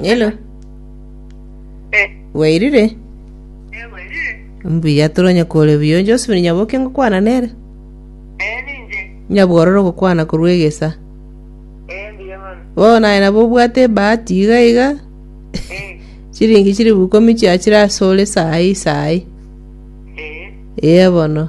Hello. Eh, Wairire? eh, werire. Mbuya turonye kore buyo Josephine Nyaboke ngokwana nere. Eh, ninje. Nyabwororo gokwana korwa egesa. Eh, mbuya mono. Bo naye nabo obwate bahati iga iga. Eh, Chiringi chiri bukomi chia chira asore sahi sahi. eh. Eye bono.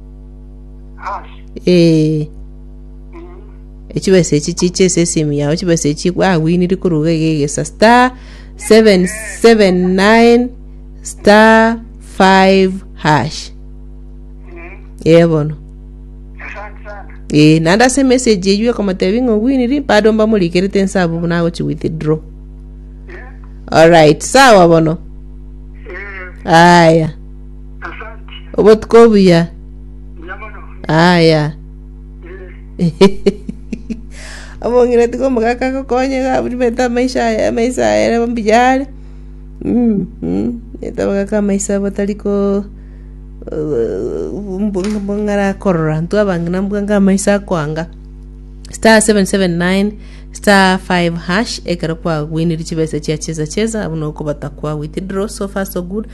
Eh. Echibesa echi chiche ase esimu yao chibesa echi gwawiniri koruga iga egesa star 779 star 5 hash eh bono eh naende ase emessage eywo ekomotebi ng'a owiniri bado mbamorikerete inse abwo buna agochi withdraw alright sawa bono aya Obotuko obuya. Aya. Omong'ina tiga omogaka agokonye iga abwo ribeete amaiso aye amaiso aye ere mbuya are. Mm, mm. Ribeete abagaka amaiso abo batari ko bong'arakorora intwe abang'ina mbwa inga amaiso akoanga. Star 779 star 5 hash ekero kwagweinire chibesa chia cheza cheza abwo nokobata kwa withdraw so far so good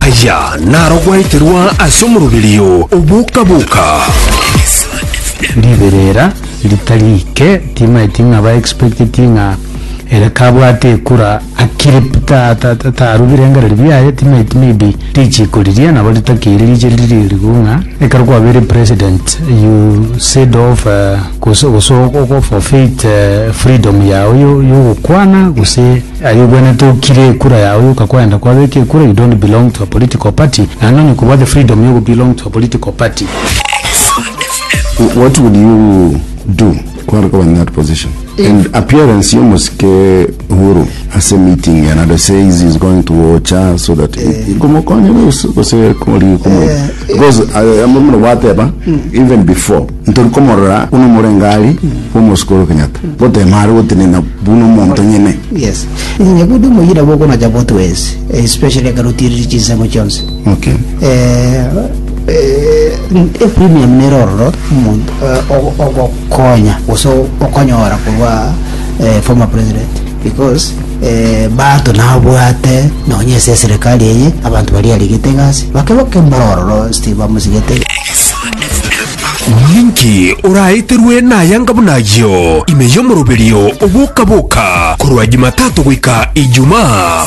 Aya naro gwaeterwa ase omoroberio o boka-boka. Riberera ritari ike timaeti ng'a ba expecteti ng'a ere kabwate ekura akire tarubire engereri biaye timaeti maybe richiko riria nabo ritakeire riche riri erigo ng'a ekero kwabeire president you said of uh, gose gose ogo forfeit uh, freedom yao yo- yogokwana gose Aye obwenerete okire ekura yao yoka kwenda kwabeka ekura you don't belong to a political party naende onye kobua the freedom yogo belong to a political party. What would you do kware koba in that position and appearance y'omosike Uhuru ase meeting and ado says he's going to Ocha so that komokonya gose kori komo because I am muna gwateba even before Ntori komorora buna omorengari bw'omosike ore Kenyatta, gotema are gotenena buna omonto nyene. Yes. Inye buna omoyina bokonacha both ways, especially ekero otiiriri chinsemo chionsi. Okay. Eh, eh, e premium nere ororo omonto eh, ogo- ogokonya gose okonyora korwa eh, former president because eh, bato nabwate nonye ase eserikali eye abanto bari arigete egasi bake bake mbara ororo steve bamosigete Ninki oraeterwe nayanga buna ayio ime y'omoroberio oboka-boka korwa Jumatatu goika Ijumaa?